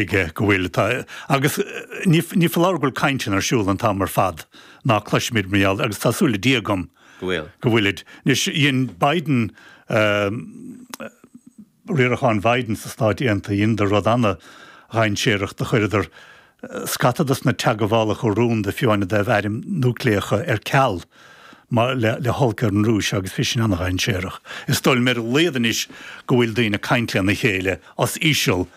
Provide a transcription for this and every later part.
aige go bhfuil. Tá. Agus ní foláir go bhfuil cainteanna ar siúl an t-am ar fad ná cloisimid mar gheall air, agus tá súil le Dia agam go bhfuil, go bhfuilid. Anois, dhein Biden, riarachán Biden sna Stáit Aontaithe, dhein rud ana-dhainséarach, do chuireadar scata dos na teagmhálacha rúnda fiú amháin a d'fhaomh airm núicléacha ar ceal mar, le, le holc ar an Rúis agus bhí sin ana-dhainséarach. Is dóigh liom ar a laghad anois go bhfuil daoine ag caint lena chéile os íseal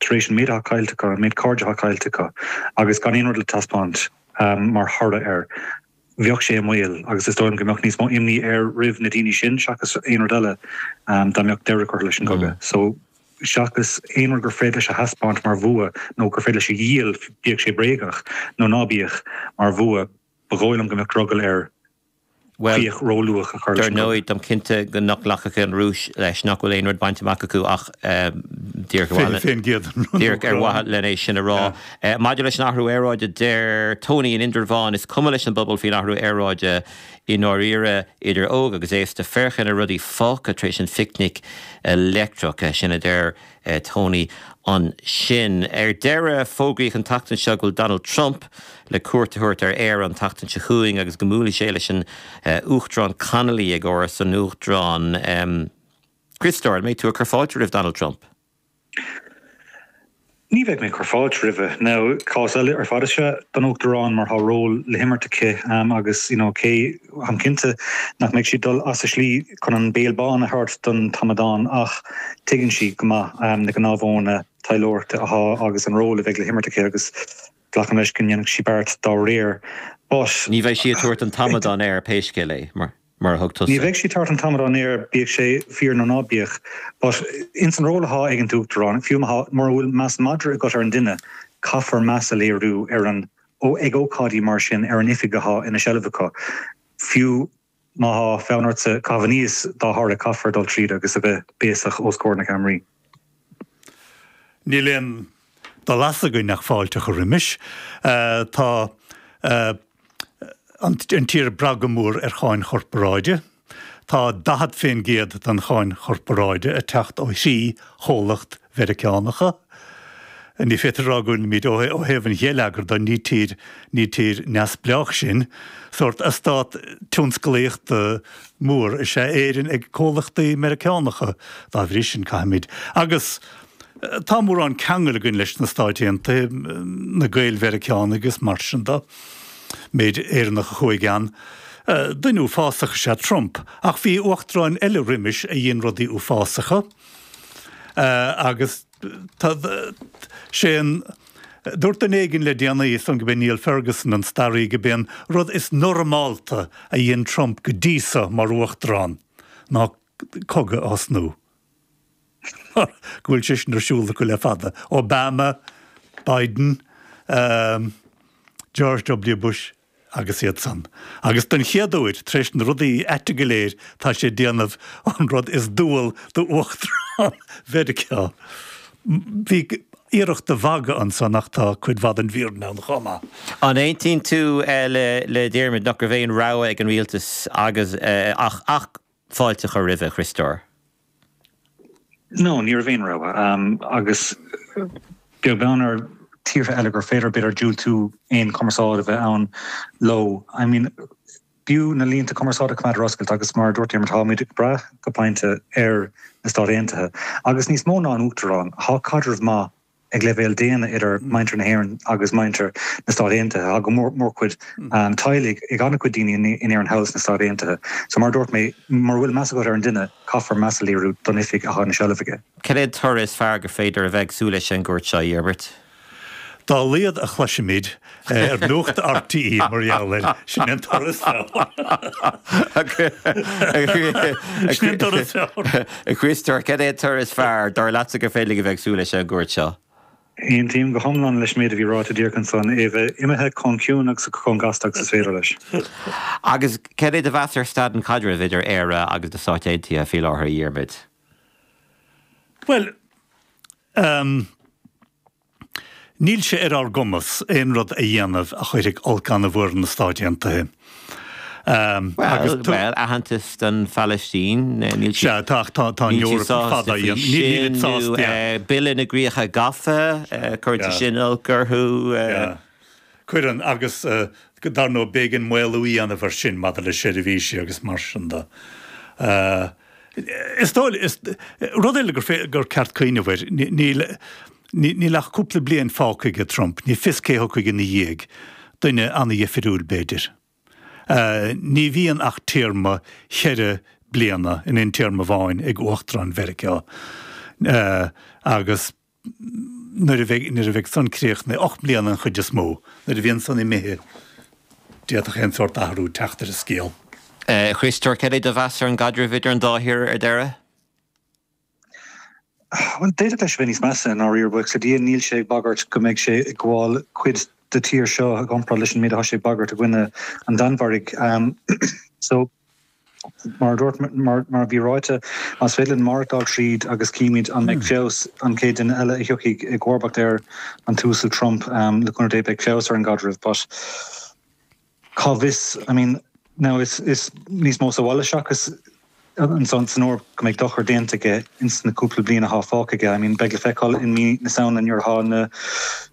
tar éis an méid atá caillte acu, an méid cairde atá caillte acu agus gan aon rud le taispeáint mar thoradh air, bheadh sé i mbaol agus is dóigh liom go mbeadh níos mó imní air roimh na daoine sin seachas aon rud eile dá mbeadh deireadh curtha leis an gcogadh so, seachas aon rud gur féidir leis a thaispeáint mar bhua nó gur féidir leis a dhíol, bíodh sé bréagach nó ná bíodh, mar bhua, ba dhóigh liom go mbeadh drogall air. Bhuel, dar ndóigh, táim cinnte nach nglacfaidh an Rúis leis nach bhfuil aon rud bainte amach acu ach díreach ar mhaithe len é sin a rá. Maidir leis an athrú aeráide, deir Tony in Indreabhán, Is cuma leis an bpobal faoin athrú aeráide i ndáiríre, idir óg agus aosta. Féach ar na rudaí fágtha tar éis an phicnic leictreach, sin a deir. Tony, Ansin, ar deireadh, fógraíodh an tseachtain seo go bhfuil Donald Trump le cuairt a thabhairt ar Éire an tseachtain seo chugainn agus go mbuailfidh sé leis an Uachtarán Connolly ag Áras an Uachtaráin. Christopher, an mbeidh tú ag cur fáilte roimh Donald Trump? Ní bheidh mé ag cur fáilte roimhe. Now, cás eile ar fad is ea don Uachtarán mar tá ról le himirt aici agus, you know, cé táim cinnte nach mbeidh sí ag dul as a slí chun an béal bán a thabhairt don t-amadán ach tuigeann sí go maith na gnáthmhodhanna taidhleoireachta atá agus an ról a bheidh le himirt aici agus glacaim leis go ndéanfaidh sí beart dá réir but Ní bheidh sí ag tabhairt an t-amadán air pé scéal é, mar a thug tusa. Ní bheidh sí ag tabhairt an t-amadán air bíodh sé fíor nó ná bíodh but ins an ról atá ag an t-Uachtarán, fiú mura bhfuil meas madra agat ar an duine, caithfear meas a léiriú ar an o Ag ócáidí mar sin, ar an oifig athá ina seilbh acu, fiú má thá fonn ortsa caitheamh aníos dá bharr, caithfear dul tríd agus a bheith béasach os comhair na gceamaraí. Níl aon dul as againn ach fáilte a chur roimis. Tá an tír ag brath go mór ar cháin chorparáide. Tá 40% den cháin chorparáide ag teacht ó thrí chomhlacht Mheiriceánacha. Ní féidir a rá go bhfuilimid, ó thaobh an gheilleagair de, ní tír, ní tír neamhspleách sinn. Sórt eastát tionsclaíochta mór is ea Éirinn ag comhlachtaí Meiriceánacha. Dá bhrí sin, caithfimid, agus tá mórán ceangail againn leis na Stáit Aontaithe, na Gaeil-Mheiriceánaigh is mar sin de, Méid Éireannach a chuaigh ann. Duine uafásach is ea Trump, ach bhí uachtaráin eile roimis a dhein rudaí uafásacha, agus tá sé sin, dúirt duine éigin le déanaí, is dóigh liom gurb é Niall Ferguson an staraí, gurb é an rud is normálta a dhein Trump go dtí so mar uachtarán ná cogadh a thosnú. mar go bhfuil sé sin ar siúl acu le fada, Obama, Biden, George W. Bush agus iad san, agus den chéad uair tar éis na rudaí aite go léir tá sé ag déanamh an rud is dual d'Uachtarán Mheiriceá. Bhí iarracht de mhagadh ansan ach tá cuid mhaith den bhfírinne ann chomh maith. An aontaíonn tú le Diarmuid nach raibh aon rogha ag an rialtas agus ach fáilte a chur roimhe, a Chriostóir? No, ní raibh aon rogha ann agus beag beann ar tíortha eile gur féidir b'fhéidir diúltú aon chumarsáid a bheith ann leo. I mean ba chóir na línte cumarsáide a choimeád ar oscailt agus mar a dúirt Diarmuid táimid ag brath go pointe ar na Stáit Aontaithe agus níos mó ná an tUachtarán tá caidreamh maith ag leibhéal daonna idir muintir na hÉireann agus muintir na Stát Aontaithe. Tá mórchuid teaghlaigh ag an-chuid daoine in Éirinn thall sna Stáit Aontaithe. So mar a dúirt mé, mura bhfuil meas agat ar an duine, caithfear meas a léiriú don oifig atá ina seilbh aige. Cad é an toradh is fearr gur féidir a bheith ag súil leis ón gcuairt seo a Dhiarmaid? Dá laghad a chloisimid Ar nuacht RTÉ mar gheall air, sin an toradh is fearr. A Chriostóir, cad é an toradh is fearr dar leatsa gur féidir linn a bheith ag súil leis ón gcuairt seo? Aontaím go hiomlán leis an méid a bhí ráite díreach anso, é a bheith imithe chomh ciúin agus chomh gasta agus is féidir leis. Agus cad é do mheas ar staid an chaidrimh idir Éire agus na Stáit Aontaithe faoi láthair, a Dhiarmaid? Bhuel, Níl sé ar ár gcumas aon rud a dhéanamh a chuirfidh olc an-mhór ar na Stáit Aontaithe. Bhuel, aitheantas don Phalaistín, níl siad sásta a dhéanamh. Sea, tá an Eoraip chomh fada a dhéanamh. Níl siad sásta. Bille na gCríocha Gafa, cuireann sé sin olc orthu. Cuireann, agus dar ndóigh b'éigean maolú a dhéanamh air sin maidir le seirbhísí agus mar sin de. Is dócha, rud eile gur ceart cuimhneamh air, níl ach cúpla bliain fágtha aige Trump, ní fios cé a thiocfaidh ina dhiaidh, duine ana-dhifriúil b'fhéidir. Ní bhíonn ach téarma ceithre bliana in aon téarma amháin ag Uachtarán Mheiriceá agus nuair a bheidh nuair a bheidh san críochnaithe, ocht mbliana an chuid is mó. Nuair a bhíonn san imithe d'fhéadfadh aon sórt athrú teacht ar an scéal. A Chríostóir, cad é do mheas ar an gcaidreamh idir an dá thír ar deireadh? Bhuel, d'fhéadfadh leis a bheith níos measa i ndáiríre, buíochas le Dia níl sé ag bagairt go mbeidh sé ag gabháil cuid de tír seo i gcomparáid leis an méid atá sé ag bagairt i gcoinne an Danmhairg. So. Mar a dúirt, mar a bhí ráite, más féidir linn maireachtáil tríd agus címid an mbeidh feabhas, an chéad duine eile a thiocfaidh i gcomharbacht ar an tUasal Trump, le cúnamh Dé, beidh feabhas ar an gcaidreamh. But cá bhfios, I mean, now is níos mó sa bhaile seachas anseo san Eoraip go mbeidh dochar déanta aige ins na cúpla bliain athá fágtha aige. I mean, beidh le feiceáil i mí na Samhna nuair athá na.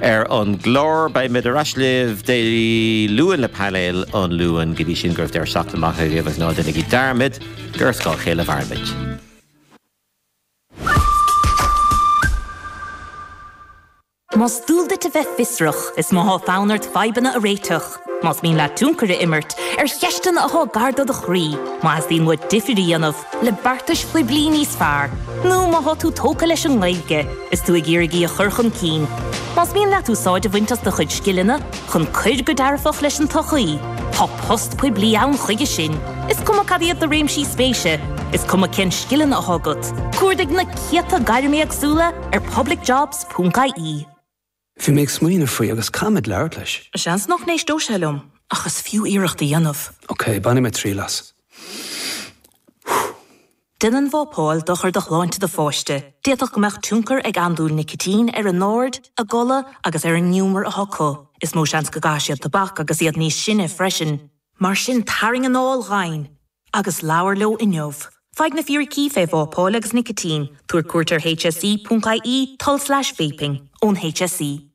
Ar an gclár, beimid ar ais libh Dé Luain le Painéal an Luain. Go dtí sin, go raibh deireadh seachtaine maith agaibh, is ná déanaigí dearmad gur ar scáth a chéile a mhairimid. Más dual duit a bheith fiosrach, is má tá fonn ort fadhbanna a réiteach, Más mian leat tionchar a imirt ar cheisteanna atá gar do do chroí, má theastaíonn uait difear a dhéanamh le beartais phoiblí níos fearr, nó má tá tú tógtha leis an nGaeilge is tú ag iarraidh í a chur chun cinn, más mian leat úsáid a bhaint as do chuid scileanna chun cuir go dearfach leis an tsochaí, tá post poiblí ann chuige sin, is cuma cad iad do réimsí spéise, is cuma cén scileanna atá agat, cuardaigh na céadta gairm éagsúla ar publicjobs.ie. Bhí mé ag smaoineamh faoi agus caithfidh mé labhairt leis. Seans nach n-éisteodh sé liom ach is fiú iarracht a dhéanamh. Ok, bainfidh mé triail as. Déanann vápáil dochar do shláinte do pháiste. D'fhéadfadh go mbeadh tionchar ag andúil nicitín ar a n-aird, a gcodladh agus ar an ngiúmar atá acu. Is mó seans go gcaithfidh siad tobac agus iad níos sine freisin. Mar sin tarraing anáil dhomhain! agus labhair leo inniu. Faigh na fíricí faoi vápáil agus nicitín, tabhair cuairt ar hse.ie, tulslais vaping, ón HSE.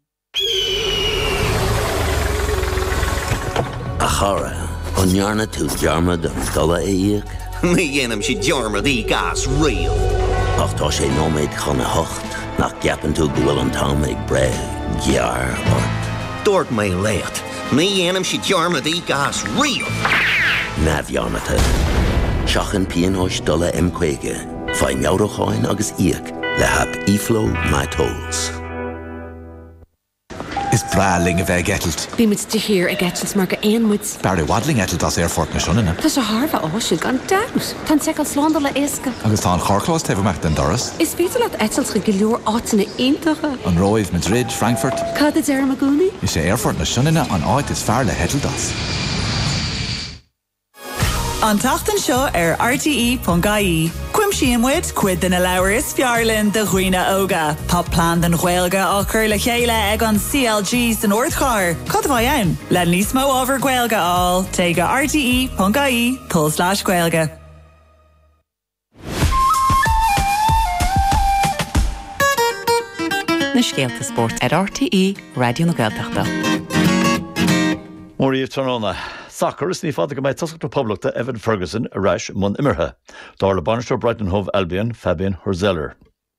A chara, an ndearna tú dearmad an dola a íoc? Ní dhéanaimse dearmad i gcás riamh. Ach tá sé nóiméad chun a hocht, nach gceapann tú go bhfuil an t-am ag breith gearr ort? Dúirt mé leat Ní dhéanaimse dearmad i gcás riamh. neamhdhearmadta. Seachain pionóis dola M50, faigh meabhrúcháin agus íoc le haip eFlow My Tolls. Is breá linn a bheith ag eitilt. Bíonn muid de shíor ag eitilt mar gur éin muid. B'fhearr i bhfad linn eitilt as Aerfort na Sionainne. Tá sé thar a bheith áisiúil gan dabht! Tá an tseiceáil slándála éasca. Agus tá an carrchlós taobh amach den doras. Is féidir leat eitilt chuig go leor áiteanna iontacha. An Róimh, Madrid, Frankfurt. Cad a deirim i gcónaí? Is é Aerfort na Sionainne an áit is fearr le heitilt as. An tseachtain seo ar RTE.ie, cuimsíonn muid cuid de na leabhair is fearr linn do dhaoine óga. Tá plean don Ghaeilge á chur le chéile ag an CLG san Ardchathair, cad a bheidh ann? Le níos mó ábhar Gaeilge a fháil, téigh go rte.ie. Tul slash gaeilge. Na scéalta spóirt ar RTÉ Raidió na Gaeltachta. Móra dhaoibh tráthnóna. Sacar is ní fada go mbeidh tosaí na Poblachta Evan Ferguson ar ais i mbun imeartha, dar le bainisteoir Brighton Hove Albion, Fabian Hürzeler.